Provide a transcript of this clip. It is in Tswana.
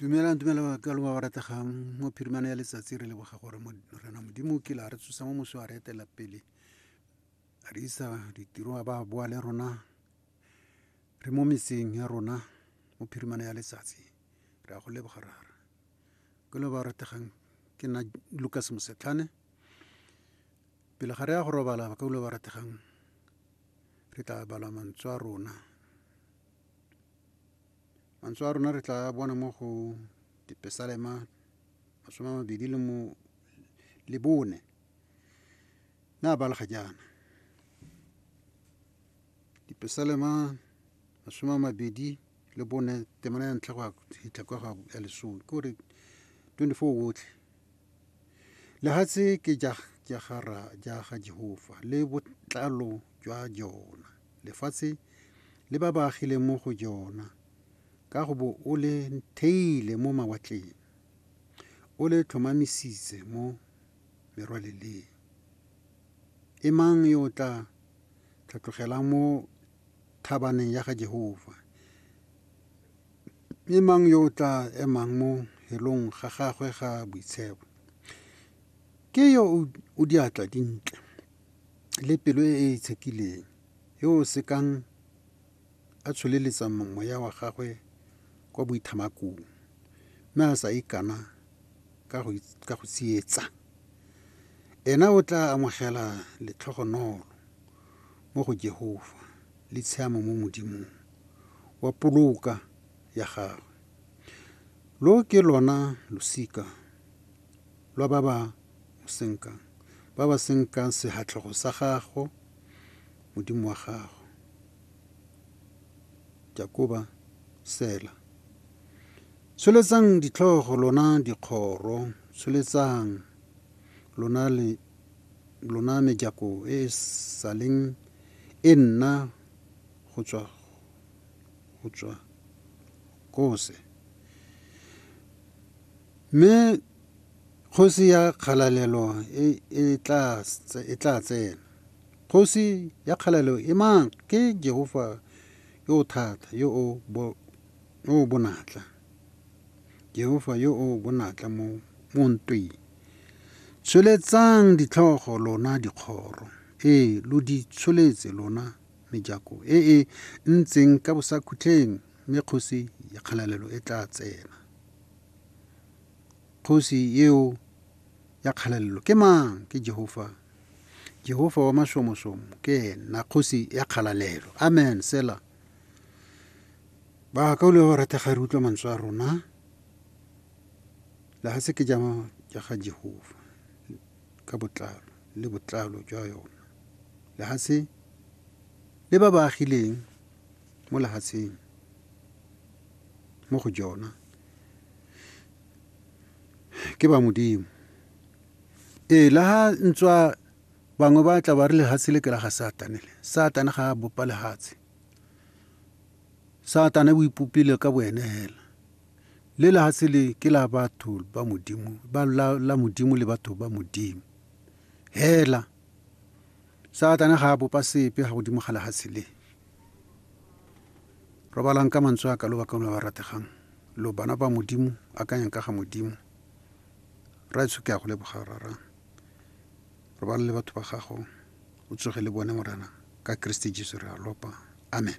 dumelang dumela ka longwa ba rategang mo phirimana ya letsatsi re leboga gore rena modimo ke la re tsosa mo moso a re etela pele a re isa ditiro a ba boa le rona re mo metseng ya rona mo phirimana ya letsatsi re a go leboga rara ke lo ba rategang ke nna lucas mosetlhane pele ga re ya go robala ba ka ulo ba rategang re tla balwa mantswe a rona Mantswe a rona re tla a bona mo go dipesalema masome a mabedi le mo le bone mme a balega jaana dipesalema masome a mabedi le bone temana ya ntlha go ya fitlha kwa ya lesome ke gore twenty-four otlhe. Lehatshe ke ja ja ga ra ja ga Jehofa le botlalo jwa jona. Lefatshe le ba ba agileng mo go jona ka go bo o le theile mo mawatleng. O le tlhomamisitse mo merwaleleng. E mang yo o tla tlhatlogelang mo thabaneng ya ga Jehofa? Mme mang yo o tla emang mo helong ga gagwe ga boitshebo? Ke yo o diatla dintle le pelo e e itshekileng, yo o sekang a tsholeletsa moya wa gagwe kwa boithamakong mme a sa ikana ka go tsietsa. Ena o tla amogela letlhogonolo mo go Jehofa le tshiamo mo Modimong. wa poloka ya gagwe. Lo ke lona losika lwa ba ba mo senkang, ba ba senkang sehatlego sa gago, Modimo wa gago. Jakoba, Sela. Tsholetsang ditlhogo, lona dikgoro, tsholetsang, lona le lona mejako e e saleng e nna go tswa go tswa kose. Mme kgosi ya kgalalelo e e tla e tla tsena. Kgosi ya kgalalelo e mang? Ke Jehofa yo o thata, yo o bo yo o bonatla. Jehofa yo o bonatla mo mo ntweng. Tsholetsang ditlhogo lona dikgoro. Ee, lo di tsholetse lona mejako e e ntseng ka bosakhutleng mme kgosi ya kgalalelo e tla tsena. Kgosi eo ya kgalalelo ke mang? Ke Jehofa. Jehofa wa mashomosomo ke ena kgosi ya kgalalelo. Amen. Sela. Ba ka o le ba ratega re utlwa mantswe a rona. La ga se ke jama ja ga Jehofa. ka botlalo le botlalo jwa yona. Lehatshe le ba ba agileng mo lehatsheng mo go jona ke ba modimo. Ee, le ha ntswa bangwe ba tla ba re lehatshe le ke la ga satane le satane ga a bopa lehatshe satane o ipopile ka bo ene hela Le lehatshe le ke la batho ba Modimo, ba la, la Modimo le batho ba Modimo. Hela. Satane ga a bopa sepe ga godimo ga lehatshe le. Robalang ka mantswe a ka lo bakang ba ba rategang. Lo bana ba Modimo, akanyang ka ga Modimo. Rraetsho ke a go leboga, rara. Robala le batho ba gago, o tsoge le bone, Morena, ka Kriste Jesu re a lopa. Amen.